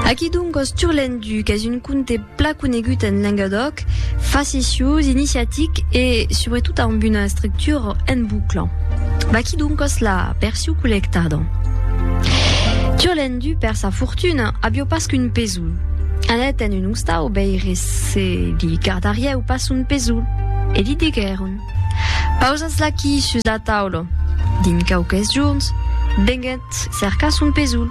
Aquí donc os Turlendu, qu'es un conte pla conegut en Lengadòc, faceciós, iniciatic e, subretot, amb una estructura en bucla. Vaquí donc os la perciu collectada. Turlendu, per sa fortuna, avió pas qu'un pesoul. Anèt en un ostau veire se li gardarieu pas son pesoul, e li diguèron, Pausatz-l'aquí sus la taula. Dins quauques jorns, venguèt. Gat cerca son pesoul.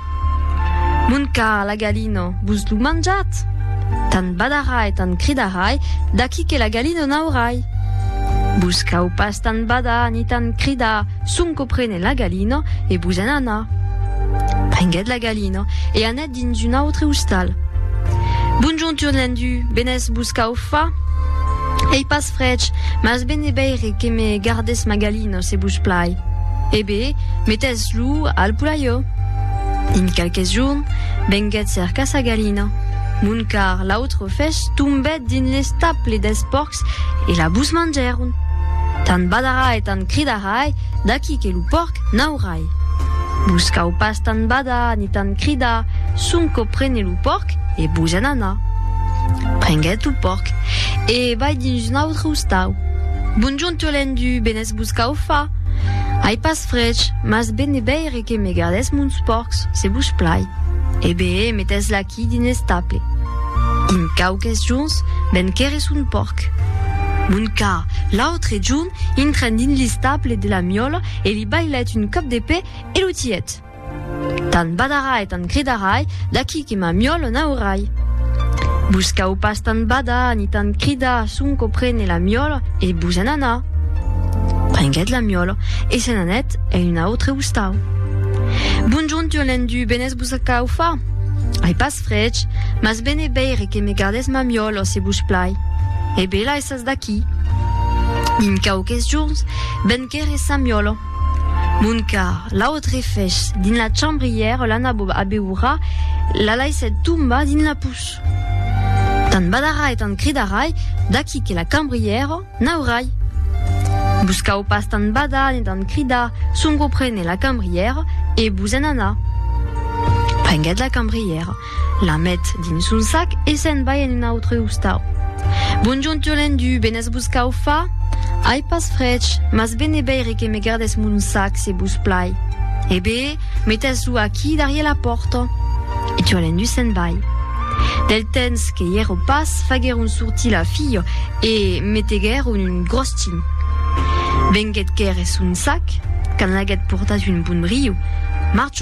Mon car la galina vos lo manjat? Tan badarà e tan cridarai d'aquí que la galina n'aurai. Vos cau pas tan badar ni tan cridar sonque prene la galina e vos en anar. Prenguèt la galina e anèt dins son còl. Dins un autre ostal. Bonjontur Lendu, benés vos cau fa? Ei pas frech, mas ben e beire que me gardes ma galina se vos plai. E bé, metés lo al poulaió. Dins quelques jorn, venguet cercar sa galina. Mon car l'autre fech tombèt dins l'estaple des pòrcs e la vos mangèron. Tant badarai e tant cridarai, d'aquí que lo pòrc n'aurai. Vos cau pas tant badar ni tant cridar, sonque prene lo pòrc e vos en anar. Prenguèt lo pòrc e vai dins un autre ostau. Bonjorn Turlendu, benes vos cau far? Ai pas frech, mas bene veire que me gardètz mons pòrcs, se vos plai. E beé, metètz l'aquí dins l'estable. Dins quauques jorns ven quèrre son pòrc. Bon cas, l'autre jorn intren dins l'estable de la miòla, e li bailèt un còp de pè e lo tièt. Tant badarai, tant cridarai, d'aquí que ma miòla n'aurai. Vos cau pas tant badar ni tant cridar sonque prene la miòla e vos en anar. Prenguèt la miòla e se n'anèt en un autre ostau. Bonjorn, tu Lendu, benés vos a caufar? Ai pas frech, mas ben e veire que me gardès ma miòla, se vos plai. E bela e Pas d'aquí. Min quauques jorns ben qu'ère Sant Miòlo. Mon car, l'autre fèch dins la chambra ièr l'an abeurat, la laissèt tombar dins la puç. Tant badarai, tant cridarai, d'aquí que la cambrièra n'aurai. Vos cau pas tant badar ne tant cridar, sonque prene la cambrièra e vos en anar. Prenguèt la cambrièra. La met dins son sac e se'n vai en un autre ostau. Bonjorn Turlendu, ben es vos cau fa? Ai pas frech, mas ben e beire que me gardes mon sac se vos plai. E bé, metes lo aquí darrier la pòrta. E Turlendu se'n vai. Del tens que i ero pas, faguèron sortir la filha e meteguèron un grostin. Venguèt quer es son sac, qu'an laguèt portat un bon briu. Marcho!